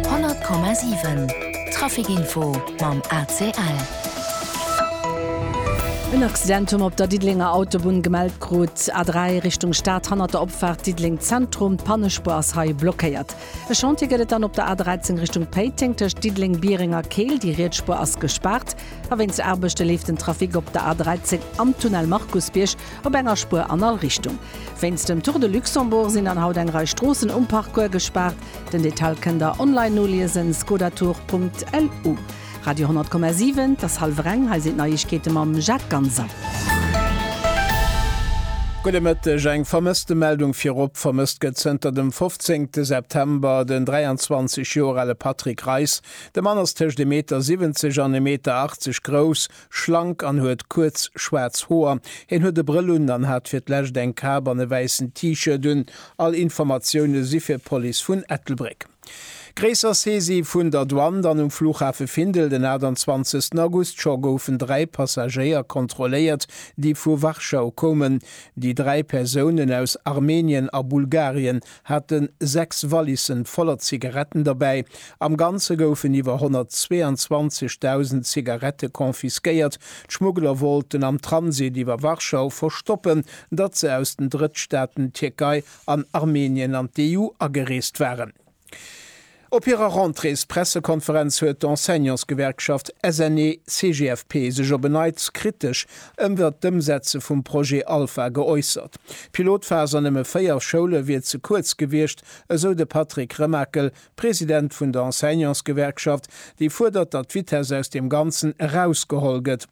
100,7 Traficinfo mam ACL. En Accident hu mer op der Diddelenger Autobunn gemellt krut, A3 Richtung Stad hannert der Opfaart Diddeleng Zentrum. D'Pannespuer ass hei blockéiert. E Chantier gëtt et dann op der A13 Richtung Péiteng tëscht Diddeleng, Biereng a Keel. Déi riets Spuer ass gespaart a wéinst Aarbechte leeft den Trafic op der A13 am Tunnel Markusbierg Op enger Spuer an all Richtung. Wéinst dem Tour de Luxembourg sinn dann haut eng Rei Stroossen um Parcours gespaart. Den Detail kënnt der online noliesen, skodatour.lu. Radio 100,7, 't ass hallwer eng, hei sinn d'Neiegkeete mam Jacques Ganser. Gudde Mëtteg, Eng Vermësstemeldung virop, Vermësst gëtt zënter dem 15 September den 23 Joer ale Patrick Reis. De Mann ass tëscht e Meter 70 an e Meter 80 grouss, schlank an huet kuerz schwaarz Hoer. Hien huet e Brëll un an hat fir d'lescht eng Kap an e wäissen T-Shirt un. All Informatioune si fir d'Police vun Ettelbréck. Gréisser Saisie vun der Douane dann um Flughafe Findel den 28 August. Scho goufen dräi Passagéier kontrolléiert, déi vu Warschau koumen. Déi dräi Persounen aus Armenien a Bulgarien hate sechs Wallissen voller Zigaretten derbäi. Am Ganze goufen iwwer 122.000 Zigarette confisquéiert. D'Schmuggler wollten am Transit iwwer Warschau verstoppen, datt se aus den Drëttstaaten Tierkei an Armenien an d'EU agereest waren. Op hirer Rentréespressekonferenz huet d'Enseignantsgewerkschaft SNE-CGFP sech op en Neits kritesch ëmwert d'Ëmsetze vum Projet Alpha geäussert. D'Pilotphas an nëmme 4 Schoule wier ze kuerz gewiescht, esou de Patrick Remakel, President vun der Enseignantsgewerkschaft, déi fuerdert, datt d'Vitess aus deem Ganzen erausgeholl gëtt.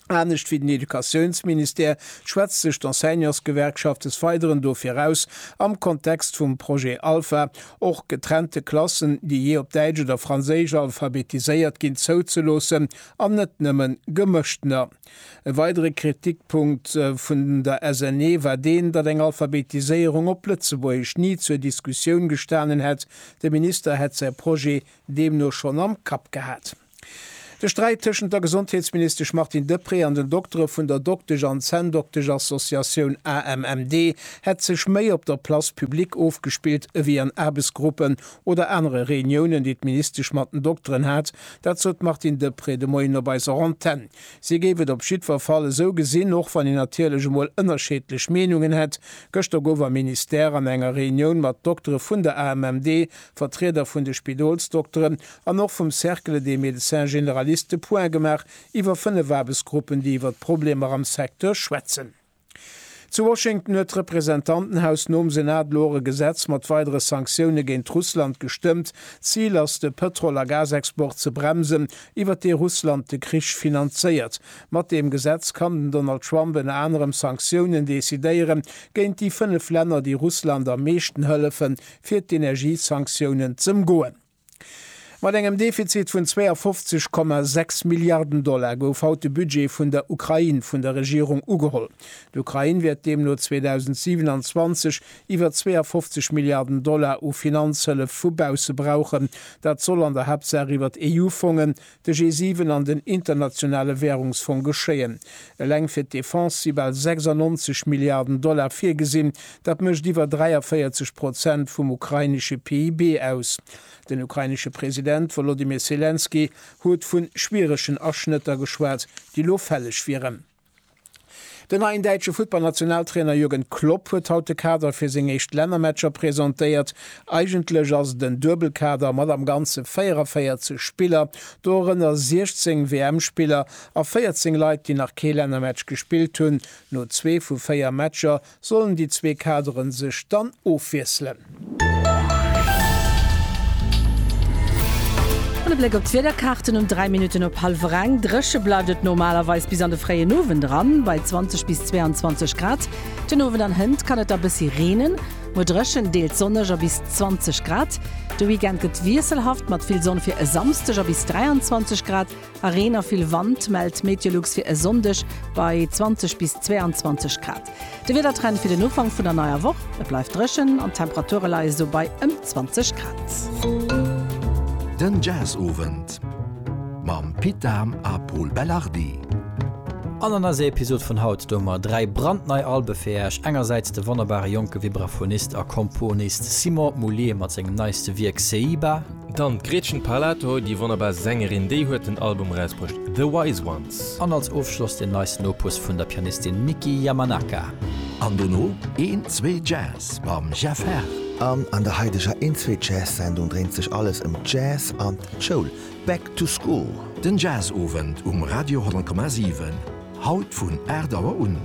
Anescht wéi den Educatiounsministère schwätzt sech d'Enseignantsgewerkschaft des Weideren dofir aus, am Kontext vum Projet Alpha och getrennte Klassen, déi jee op Däitsch oder Franséisch alphabetiséiert ginn, zouzeloossen an net nëmme gemëschtener. E weidere Kritikpunkt vun der SNE war deen, datt eng Alphabetiséierung op Lëtzebuergesch ni zur Diskussioun gestanen hätt. De Minister hätt säi Projet deemno schonn am Kapp gehat. De Sträit tëschent der Gesondheetsministesch Martine Deprez an den Doktere vun der Doktesch an Zänndoktesch-Associatioun AMMD hätt sech méi op der Place publique ofgespillt ewéi an Aarbechtsgruppen oder anere Reuniounen, déi d'Ministesch mat den Dokteren hat. Dat sot d'Martine Deprez de Moien op eiser Antenn. Si géif et op jiddwer Fall esou gesinn, och wann een natierlech emol ënnerscheedlech Meenungen hätt. Gëschter gouf am Ministère an enger Reunioun mat Doktere vun der AMMD, Vertrieder vun de Spidolsdokteren an och vum Cercle des médecins généralistes de Point gemaach iwwer fënnef Aarbechtsgruppen, déi iwwer d'Problemer am Secteur schwätzen. Zu Washington huet d'Representantenhaus nom Senat elo och e Gesetz mat weidere Sanktioune géint Russland gestëmmt. D'Zil ass, de Pëtrol a Gasexport ze bremsen, iwwer dee Russland de Krich finanzéiert. Mat deem Gesetz kann den Donald Trump ënner anerem Sanktiounen decidéiere géint déi fënnef Länner, déi Russland am meeschten hëllefen, fir d'Energiesanktiounen z'ëmgoen. Mat engem Defizit vun 52,6 Milliarden Dollar gouf haut de Budget vun der Ukrain vun der Regierung ugeholl. D'Ukrain wäert deemno 2027 iwwer 52 Milliarden Dollar u Finanzhëllef vu bausse brauchen. Dat soll an der Haaptsaach iwwert EU-Fongen, de G7 an den Internationale Währungsfong geschéien. Eleng fir d'Defense si bal 96 Milliarden Dollar virgesinn. Dat mécht iwwer 43 Prozent vum ukrainesche PIB aus. Den ukrainesche President Wolodymyr Selenskyj huet vu schwieregen Aschnëtter geschwat, déi elo fälleg wieren. Den neien däitsche Futtballnationaltrainer Jürgen Klopp huet haut de Kader fir seng éischt Lännermatcher presentéiert. Eigentlech ass et en Duebelkader mat am Ganze 44 Spiller, dorënner 16 WM-Spiller a 14 Leit, déi nach kee Lännermatch gespillt hunn. No zwee vu véier Matcher Sollen déi zwee Kaderen sech dann ofwiesselen? An e Bléck op d'Wiederkaarten um 3 Minutten op hallwer eng. Dréche bleift et normalerweis bis an de fréien Owend eran, bei 20 bis 22 Grad. Den Owend an Hënt kann et da bëssi reenen. Muer dréchen, deels sonneg a bis 20 Grad. De Weekend gëtt wiesselhaft mat vill Sonn fir e Samsdeg a bis 23 Grad. A Reen a vill Wand mellt Meteolux fir e Sonndeg bei 20 bis 22 Grad. De Wiedertrend fir den Ufank vun der neier Woch, Et bleift dréchen an d'Temperature leie sou bei ëm 20 Grad. Den Jazzowend mam Pit Dahm a Pol Belardi. An an eiser Episod vun haut doe mer 3 brandnei Albe fir Äech. Engersäits de wonnerbare jonke Vibraphonist a Komponist Simon Moullier mat sengem neiste Wierk Seiba. Dann d'Gretchen Parlato, déi wonnerbar Sängerin, déi huet den Album erausbruecht The Wise Ones. An als Ofschloss den neisten Opus vun der Pianistin Miki Yamanaka. An dono een zwee Jazz mam Jeff Herr. An an der haideger een zwee Jazz Sendung dréint sech alles ëm d'Jazz an d'Schoul, Back to School. Den Jazz Owend um Radio 10,7. Haut vun 8 Auer un.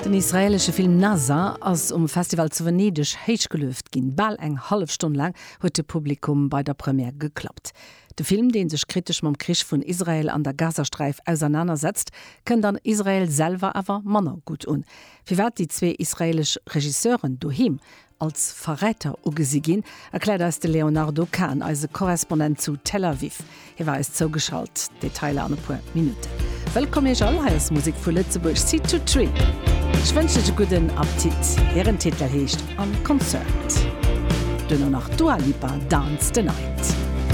Den israelesche Film Nazha ass um Festival zu Venedeg héich gelueft ginn. Bal eng hallef Stonn laang huet de Publikum bei der Première geklappt. De Film, dee sech kritesch mam Krich vun Israel an der Gazasträif ausernaner setzt, kënnt an Israel selwer awer manner gutt un. Firwat déi zwee israelesch Regisseuren doheem als Verräter ugesi ginn, erkläert eis de Léonardo Kahn, eise Korrespondent zu Tel Aviv. Hie war eis zougeschalt. Detailer an e puer Minutten. Wëllkomm Iech all, hei ass Musek vu Lëtzebuerg, Seed to Tree. Ech wënschen Iech e gudden Appetit. Hiren Titel heescht En Concert. Duerno nach d'Dua Lipa, Dance the Night.